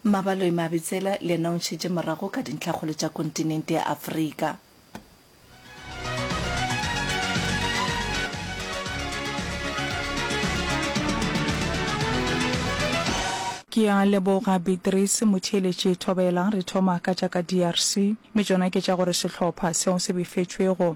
Mabaloe Mabitsela le yena o ntšhetše morago ka dintlhakgolo tša kontinente ya Afrika. Ke a leboga Beatrice Motheeletši Thobela. Re thoma ka tša ka DRC, mme tšona ke tša gore sehlopha seo se befetšwego,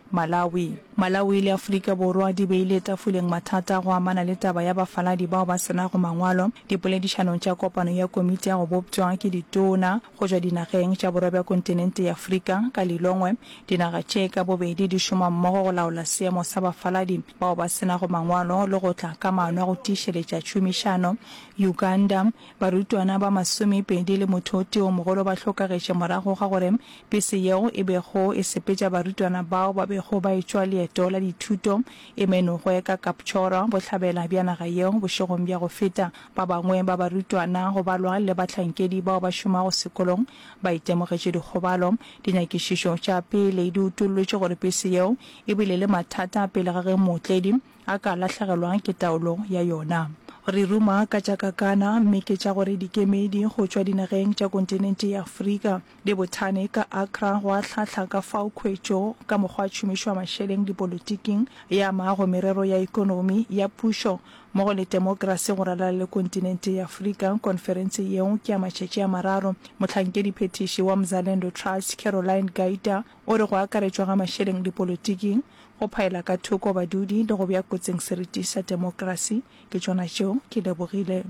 Malawi. Malawi le Afrika Borwa di beile tafoleng mathata a go amana le taba ya bafaladi bao ba se nago mangwalo dipoledišanong tša kopano ya komiti ya go boptšwa ke ditona go tšwa dinageng tša borwa bja kontinente ya Afrika. Ka Lilongwe, dinaga tše ka bobedi di šoma mmogo go laola seemo sa bafaladi bao ba se nago mangwalo le go tla ka maano a go tiišeletša tšhomišano. Uganda. Barutwana ba masomepedi le motho o tee o mogolo ba hlokagetše morago ga gore bese yeo e bego e sepetša barutwana bao ba bego ba etšwa leeto la dithuto e menogwe ka Kapchorwa, bohlabela bja naga yeo, bošegong bja go feta. Ba bangwe ba barutwana, go balwa le bahlankedi bao ba šomago sekolong, ba itemogetše dikgobalo. Dinyakišišo tša pele di utollotše gore bese yeo e bile le mathata pele ga ge mootledi, A ka lahlegelwa ke taolo ya yona. Re ruma ka tša kakana, mme ke tša gore dikemedi go tšwa dinageng tša kontinente ya Afrika di bothane ka Accra go ahlahla ka fao khwetšo ka mokgwa tšhomišo ya mašeleng dipolotiking e amago merero ya ekonomi, ya pušo mmogo le temokrasi go ralala le kontinente ya Afrika. Konferense yeo ke ya matšatši a mararo. Mohlankedi phethiši wa Mzalendo Trust, Caroline Gaita, O re go akaretšwa ga mašeleng dipolotiking, go phaela ka thoko badudi le go bea kotsing seriti sa demokrasi ke tšona tšeo ke lebogile.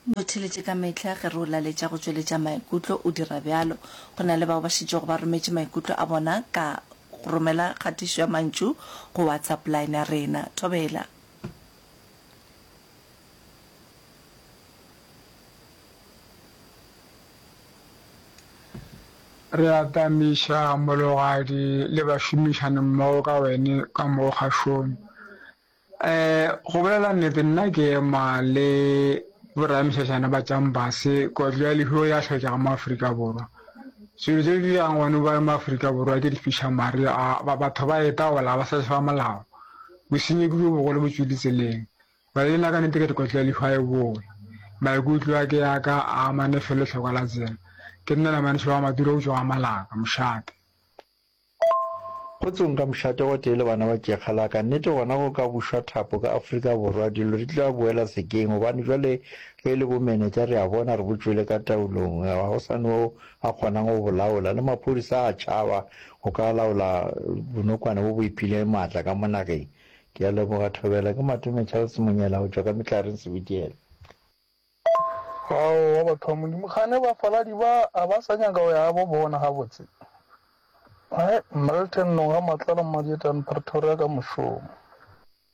Motheeletše ka mehla ge re o laletša go tšweletša maikutlo, o dira bjalo. Go na le bao ba šetšego ba rometše maikutlo a bona ka go romela kgatišo ya mantšu go WhatsApp line ya rena. Thobela. Re atamiša mologadi le bašomišanimmogo ka wene ka mo kgašong. Um go bolela nnete, nna ke ema le boramešašana ba tšampase kotlo ya lehuo ya hlokega mo Afrika Borwa. Selo tse di dirang gone ba mo Afrika Borwa ke difišamare, batho ba etaola ba sa molao. Bosenyi ke bjo bogolo botšwe litseleng. Bale lena ka nete ke lekotlo la lihwa e bola. Maikutlo a ke a ka a amane fe lehlokwa la tsela. Ke nna la manese wa Madura eupša wa Malaka, mošate. Go tsong ka mošate gotee le bana ba tšekga la ka. Nete gona go ka bušwa thapo ka Afrika Borwa. Dilo di tla boela sekeng gobane bjale ge e le bomenetša re a bona re botšwele ka taolong. Ga go sa ne yo a kgonang go bo laola. Le maphodisa a a tšhaba Go ka laola bonokwane bo bo iphileng maatla ka mo nageng. Ke a leboga thobela. Ke Matume Charles Monyela go tšwa ka Mehlaring Sebitiela. Aowa batho ba Modimo kgane bafaladi ba a ba sa nyaka go ya gabo bona gabotse Hi Milton Noga Matlala Mmadietane Pretoria ka mošomo.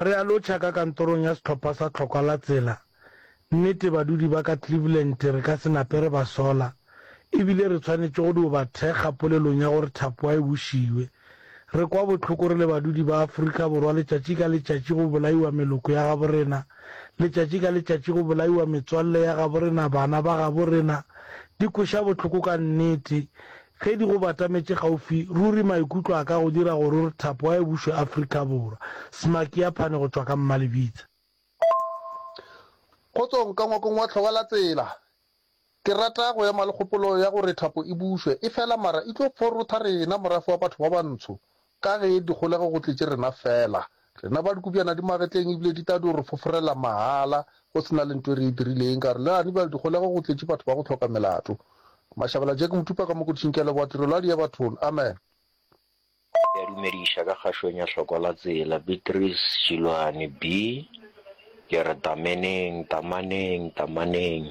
Re a lotšha ka kantorong ya sehlopha sa Tlhokwa la Tsela. Nnete badudi ba ka Cleveland re ka se nape re ba sola, e bile re tshwanetše go dio ba thekga polelong ya gore Thapoa e bušiwe. Re kwa bohloko re le badudi ba Afrika Borwa letšatši ka letšatši go bolaiwa meloko ya gabo rena, letšatši ka letšatši go bolaiwa metswalle ya gabo rena, bana ba gabo rena. Di kweša bohloko ka nnete. Ge di go batametše kgaufsi, ruri maikutlo a ka go dira gore o re thapo a e bušwe Afrika Borwa. Smakiaphane go tšwa ka Mmalebitse. Kgotsong ka ngwakong wa hloba la tsela. Ke rata go ema le kgopolo ya gore thapo e bušwe, e fela mara e tlo forotha rena morafe wa batho ba bantsho Ka ge dikgolego go tletše rena feela, rena ba dikobjana di magetleng ebile di tla dio re foforela mahala go se na le nto e re e dirileng. Ka re, Leani bjale dikgolego go tletše batho ba go hloka melato. Mashabela Jack Motupa ka Mokodišing, ke a leboga tirelo ya Diabathon. Amen. Ke a dumediša ka kgašweng ya Hlokwa la Tsela, Beatrice Šiloane, Bi, ke re tameneng, tamaneng, tamaneng.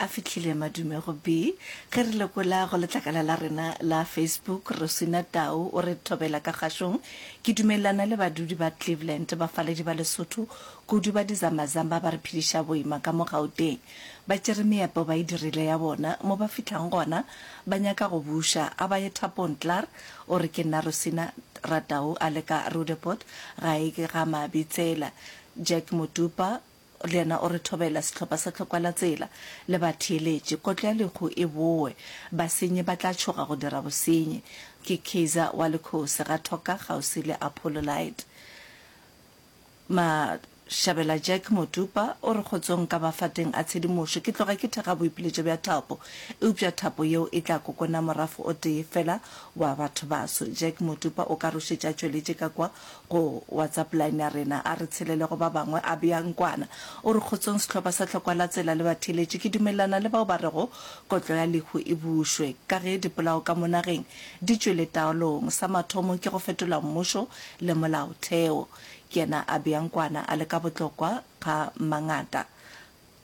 A fihlile madume go bi. Ge re lekola go letlakala la rena la Facebook, Rosina Tau o re, Thobela ka kgašong, ke dumelelana le badudi ba Cleveland, bafaledi ba Lesotho, kudu ba dizambazamba ba re phediša boima ka mo Gauteng. Ba tšere meepo ba e dirile ya bona, mo ba fihlang gona ba nyaka go buša, a ba ye thapong klaar o re ke nna Rosina ra Tau a le ka Roodepoort ga e ke ga Mabitsela. Jack Motupa, Le yena o re thobela sehlopha sa tlhokwalatsela le batheeletši. Kotlo ya lehu e boe. Basenyi ba tla tšhoga go dira bosenyi. Ke Kaiser wa Lekhosi, ga Thoka, kgauswi le Apollolite. Mashabela Jack Motupa o re kgotsong ka mafateng a tshedimošo. Ke tloga ke thekga boipiletšo bja thapo, eupša thapo yeo e tla kokona morafo o tee fela wa batho baso. Jack Motupa o ka rošetša tšweletše ka kwa Go WhatsApp line ya rena, A re tshelele go ba bangwe, a bea nkwana. O re, Kgotsong sehlopha sa Tlhokwa la Tsela le batheeletši, ke dumelelana le bao ba rego kotlo ya lehu e bušwe. Ka ge dipolao ka mo nageng di tšwele taolong, sa mathomo ke go fetola mmušo le molaotheo. Ke yena a bea nkwana a le ka botlokwa ga mangata.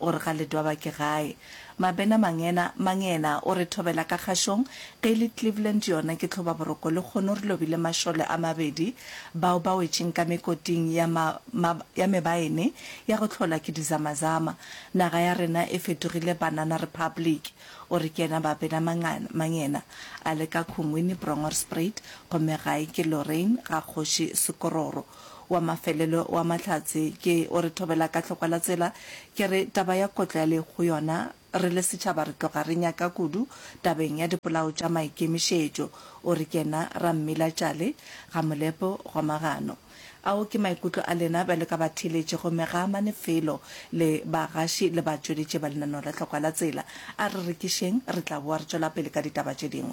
Gore ga le dwaba ke gae. Mabena Mangena, Mangena o re thobela ka kgašong, ge e le Cleveland yona ke tlhoba boroko lekgono re lobile mašole a mabedi bao ba wetšeng ka mekoting ya ma, ma, ya mebaene ya go tlhola ke dizamazama. Naga ya rena e fetogile banana republic. O re ke yena Babena Mangana, Mangena a le ka Khungwini, Bronghorstspruit, gomme gae ke Lorraine ga kgoši Sekororo. Wa mafelelo wa Mahlatse ke o re thobela ka hlokwa la tsela. Ke re taba ya kotlo ya le go yona re le setšhaba re tloga re nyaka kudu tabeng ya dipolao tša maikemišetšo, o re ke na Rammila Tšale, Gamolepo, Gomagano. Ao ke maikutlo a lena bjalo ka batheeletši gomme ga a amane felo le bagaši le batšweletši ba lenaneo la hlokwa la tsela. A re rekišeng re tla boa re tšwela pele ka ditaba tše dingwe.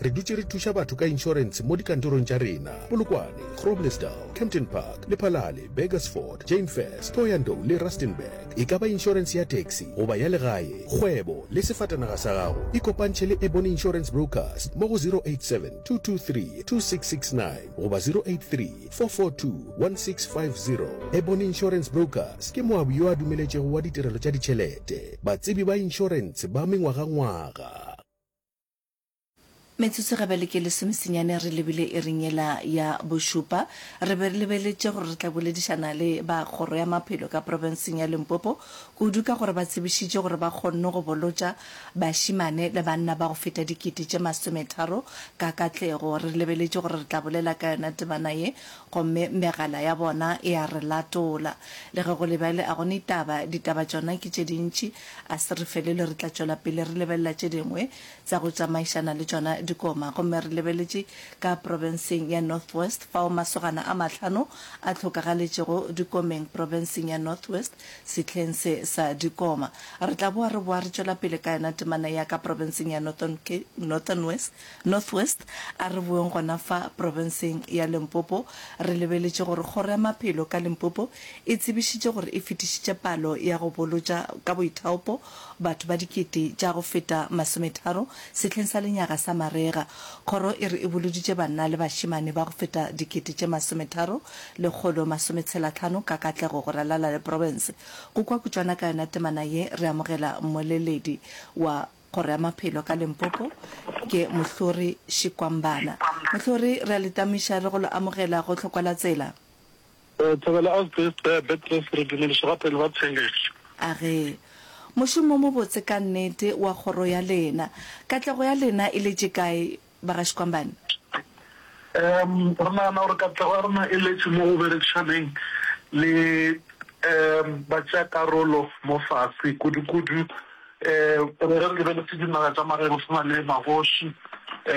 Re dutše re thuša batho ka inšorense mo dikantorong tša rena, Polokwane, Groblersdal, Kempton Park, Lephalale, Burgersfort, Jane First, Thohoyandou le Rustenburg. E ka ba inšorense ya taxi goba ya legae, kgwebo le sefatanaga sa gago. Ikopantšhe le Ebony Insurance Brokers mo go 0872232669 goba 0834421650. Ebony Insurance Brokers ke moabi yo a dumeletšego wa ditirelo tša ditšhelete, batsebi ba inšorense ba mengwagangwaga. Metsotso ga bele ke lesomesenyane re lebile iring yela ya bošupa. Re be re lebeletše gore re tla boledišana le ba Kgoro ya Maphelo ka profenseng ya Limpopo, kudu ka gore ba tsebišitše gore ba kgonne go bolotša bašemane le banna ba go feta dikete tše masometharo ka katlego. Re lebeletše gore re tla bolela ka yona temana ye, gomme megala ya bona e a re latola. Le ge go le bjale a go ne taba, ditaba tšona ke tše dintši. A se re felelwe, re tla tšwela pele re lebelela tše dingwe. tsa go tsamaišana le tšona dikoma gomme re lebeletše ka profenseng ya Northwest fao masogana a mahlano a hlokagaletšego dikomeng profenseng ya Northwest sehleng se sa dikoma. Re tla boa re boa re tšwela pele ka yona temana ya ka profenseng ya Northern West, Northwest. A re boeng gona fa profenseng ya Limpopo. Re lebeletše gore Kgoro ya Maphelo ka Limpopo e tsebišitše gore e fetišitše palo ya go bolotša ka boithaopo batho ba dikete tša go feta masometharo sehleng sa lenyaga sa marega. Kgoro e re e boloditše banna le bašemane ba go feta dikete tše masometharo lekgolo masometshelatlhano ka katlego go ralala le profense. Go kwa kutšwana ka yona temana ye, re amogela mmoleledi wa Kgoro ya Maphelo ka Limpopo, ke Mohlori Shikwambana. Mohlori, re a le tamuša le go lo amogela go Tlhokwalatsela. Thobela Asbest Bea Beatrice re dumediša ba pele ba theeletšo. A re, Mošomo wo mobotse ka nnete wa kgoro ya lena. Katlego ya lena e letše kae, bagaškwambane? Em, re nagana gore katlego ya rena e letše mo go berekišaneng le, em, batšeakarolo mo fase, kudu-kudu Ee, re re lebeletse dinaga tša mageno se na le magoši,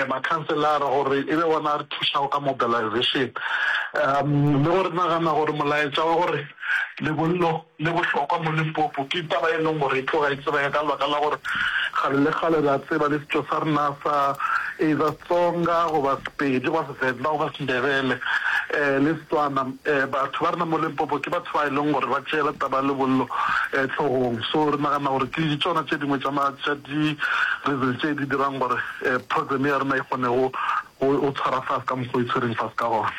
makhanselara gore e be wona a re thušago ka mobilization. Um le go re nagana gore molaetša wa gore lebollo le bohlokwa mo Limpopo ke taba e leng gore e tloga e tsebega ka lebaka la gore kgale le kgale re a tseba le setšo sa rena sa either Tsonga goba Sepedi goba The Novas Ndebele, le Setswana, batho ba rena mo Limpopo ke batho ba e leng gore ba tšeela taba ya lebollo hlogong. So re nagana gore ke tšona tše dingwe tša di reasons tše di dirang gore program ya rena e kgone go tshwara fase ka mokgwa o e tshwereng fase ka gona.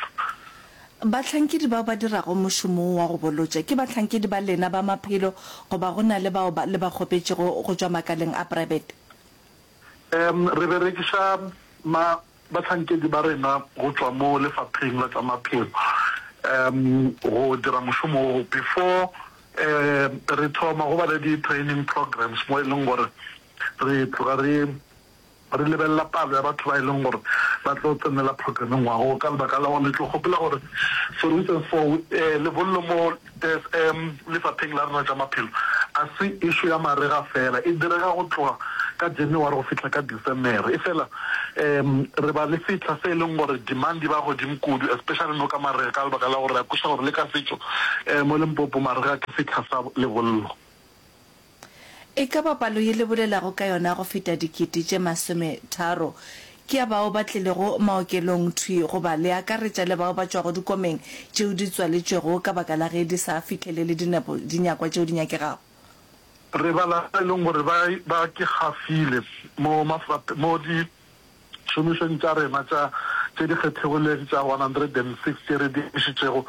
Bahlankedi bao ba dirago mošomo wo wa go bolotša ke bahlankedi ba lena ba maphelo goba go na le bao le ba kgopetšego go tšwa makaleng a private? Re berekiša Bahlankedi ba rena go tšwa mo lefapheng la tša maphelo um go dira mošomo wo before um re thoma go ba le di training programs mo e leng gore re tloga re re lebelela palo ya batho ba e leng gore ba tlo tsenela programme ngwaga wo ka lebaka la gore le tlo kgopela gore for instance for um lebollo mo Tes e, Lefapheng la rena tša maphelo a se ešo ya marega fela, e direga go tloga ka January go fihla ka Decemere. Efela e, re ba le sehla se e leng gore demand e ba godimo kudu, especially no ka marega ka lebaka la gore re a kweša gore le ka setšo e, mo Limpopo marega ke sehla sa lebollo. E ka ba palo ye le bolelago ka yona go feta dikete tše masome tharo ke ya bao ba tlilego maokelong thwi goba le akaretša le bao ba tšwago dikomeng tšeo di tswaletšwego ka baka la ge di sa fihlelele dinepo dinyakwa tšeo di nyakegago? Re bala ba e leng gore ba ke gafile mo mafrap mo di Tšhomišong tša rena tša tše di kgethegilego tša 106 tše re di emišitšego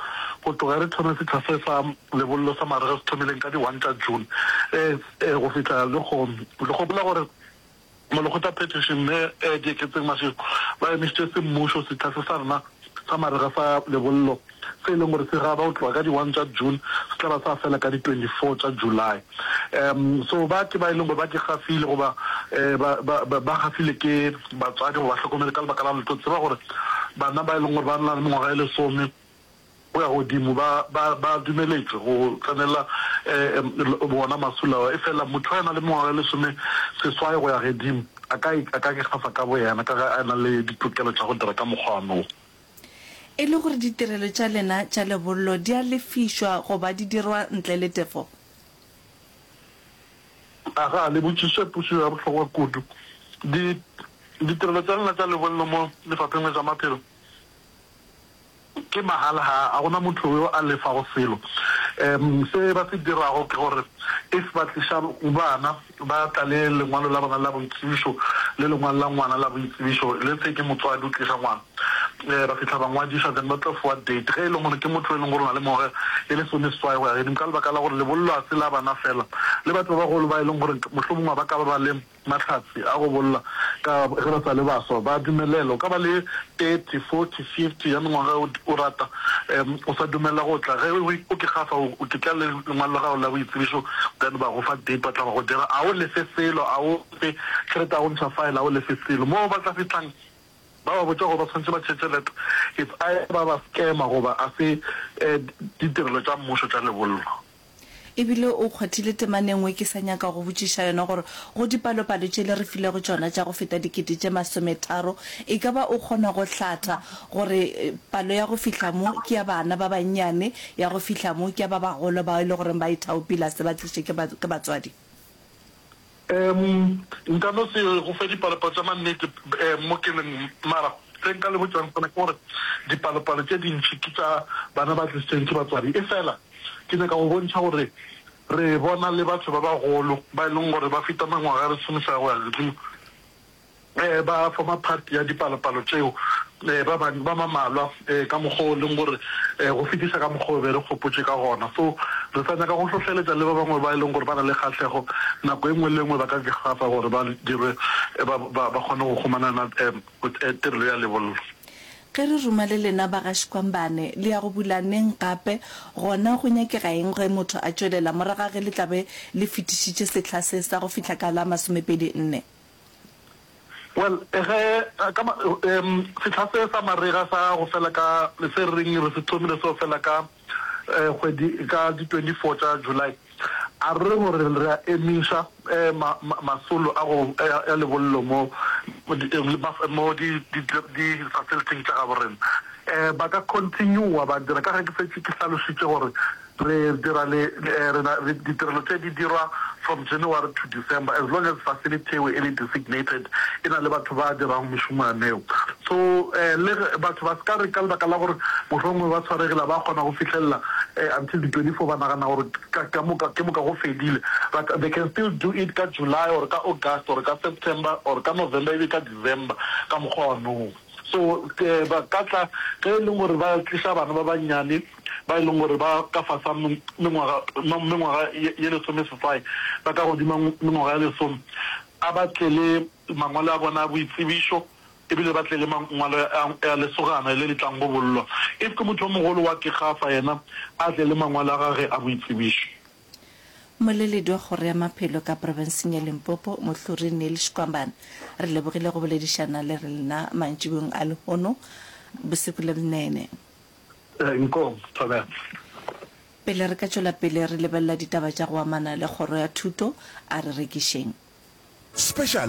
go tloga re thoma sehla se sa lebollo sa marega se thomileng ka di 1 tša June ee go fihla lehono, re gopola gore Molekgotla Patricia Mme Dieketseng Mashego ba emišitše semmušo sehla se sa rena. Sa marega sa lebollo, se e leng gore se raba go tloga ka di one tša June, se tla ba sa fela ka di twenty four tša July. Um so ba ke ba e leng gore ba ke gafile goba um ba ba ba ba gafile ke batswadi goba bahlokomedi ka lebaka la lotho tseba gore bana ba e leng gore ba na le mengwaga e lesome Go ya godimo, ba, ba, ba dumeletšwe go tsenela um wona masula ao. Efela motho yo a nang le mengwaga e lesome seswai go ya gedimo a ka, a ka ikgafa ka boyena ka ge a na le ditokelo tša go dira ka mokgwa wa moo. E le gore ditirelo tša lena tša lebollo di a lefišwa goba di dirwa ntle le tefo? Aga, le botšišišo ya pušo ya bohlokwa kudu. Di, ditirelo tša lena tša lebollo mo Lefapheng la tša Maphelo, Ke mahala, ga a gona motho yo a lefago selo. Umm se ba se dirago ke gore if ba tliša bana ba tla le lengwalo la bona la boitsebišo le lengwalo la ngwana la boitsebišo, let's say ke motswadi o tliša ngwana, um ba fihla ba ngwadiša then ba tlo fiwa date ge e le gore ke motho yo e leng gore o na le mengwaga e lesome seswai go ya godimo ka lebaka la gore lebollo ga se la bana fela, le batho ba bagolo ba e leng gore mohlomongwe ba ka ba ba le Mahlatse a go bolla ka ge ba sa le baswa ba dumelela. O ka ba le 30, 40, 50 ya mengwaga ge o rata. Um o sa dumelela go tla. Ge o ke gafa o ke tla le lengwalo la gago la boitsebišo then ba go fa date ba tla ba go dira. A o lefe selo, a o fe tšhelete, a o ntšha file, a o lefe selo. Moo ba tla fihlang ba ba botša gore ba swanetše ba tšhetše leta. It's either ba ba scammer goba a se um ditirelo tša mmušo tša lebollo. E bile o kgwathile temana e nngwe ke sa nyaka go botšiša yona gore go dipalopalo tše le re filego tšona tša go feta dikete tše masometharo e ka ba o kgona go hlatha gore palo ya go fihla mo ke ya bana ba bannyane, ya go fihla mo ke ya ba bagolo bao e le goreng ba ithaopile a se ba tlišwe ke batswadi. Em, nka no se go fe dipalopalo tša mannete, em, mo ke leng, mara se nka le botšang sona ke gore dipalopalo tše dintši ke tša bana ba tlisitsweng ke batswadi. Efela ke nyaka go bontšha gore re bona le batho ba bagolo ba e leng gore ba feta mengwaga ya lesomeswai go ya godimo. Ba forma part ya dipalopalo tšeo ba bang ba mamalwa ka mokgwa o leng gore go fetisa ka mokgwa o be re kgopotše ka gona. So re sa nyaka go hlohleletša le ba bangwe ba e leng gore ba na le kgahlego nako e nngwe le e nngwe ba ka gafa gore ba dirwe ba ba kgone go humanana tirelo ya lebollo. Ge re ruma le lena ba ga Xikwambane le ya go bula neng gape, gona go nyakega eng ge motho a tšwelela moraga ge le tla be le fetišitše sehla se sa go fihla ka la masomepedi nne? Well, ge ka ma, um, sehla se sa marega sa go fela ka, se re reng re se thomile seo fela ka, um, kgwedi, ka di 24 tša July, a re gore re a emiša, um, ma, ma, masolo a go, a, a lebollo mo, mo di, mo di, di, di facility-ing tša gabo rena, um, ba ka continue-a ba dira, ka ge ke fetše ke hlalošitše gore Re dira le re na re ditirelo tše di dirwa from January to December as long as facility eo e le designated e na le batho ba dirago mešomo ya neo. So le batho ba se ka re ka lebaka la gore mohlomongwe ba tshwaregile ga ba kgona go fihlelela until di 24 ba nagana gore ka ka moka ke moka go fedile but they can still do it ka July or ka August or ka September or ka November ebe ka December ka mokgwa wa noo. So ba ka tla ge e leng gore ba tliša bana ba bannyane. ba e leng gore ba ka fasa mengwaga ye lesomeseswai ba ka godima mengwaga ya lesome a ba tle le mangwalo a bona a boitsebišo e bile ba tle le mangwalo a lesogana le le tlang go bollwa. If ke motho o mogolo wa kegafa yena a tle le mangwalo a gage a boitsebišo. Moleledi wa Kgoro ya Maphelo ka Profenseng ya Limpopo, Mohluri Neil Shkwambane, re lebogile go boledišana le rena mantšibong a lehono bosiku le bnene. Nkom, Thobela. Pele re ka tšwela pele re lebelela ditaba tša go amana le Kgoro ya Thuto, a re rekišeng. Special